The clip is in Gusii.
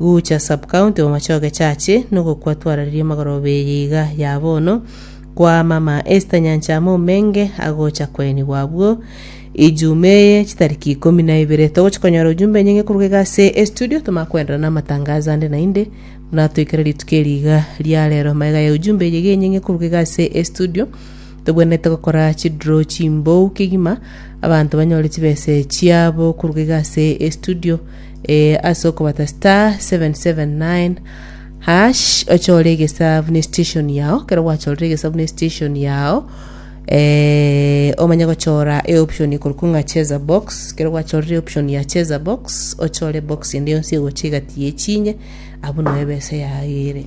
Gucha subcounty Bomachoge Church nogokwa twarareria magoro beiga ya bono kwa mama Esther Nyanchama Omenge agocha koenigwa abwo Ijumaa eye chitariki ikomi na ibere togochi konyora ujumbe enyinge koruga iga ase estudio toma kwenderana amatangazo ande nainde buna toikere rituko eriga ria rero magega ya ujumbe eyige enyinge koruga iga ase estudio Togwenerete gokora chidro chimbou kegima abanto banyore chibese chiabo koruga iga ase estudio eye ase okobata star 779 hash ochore egesa buna estation yao kero gwachorire egesa buna estation yao eh, omanye gochora eoption ikorokwa ng'a cheza box kero gwachorire eoption ya cheza box ochore box ende yonsi egocha egati yechinye abwo noe ebesa yago ere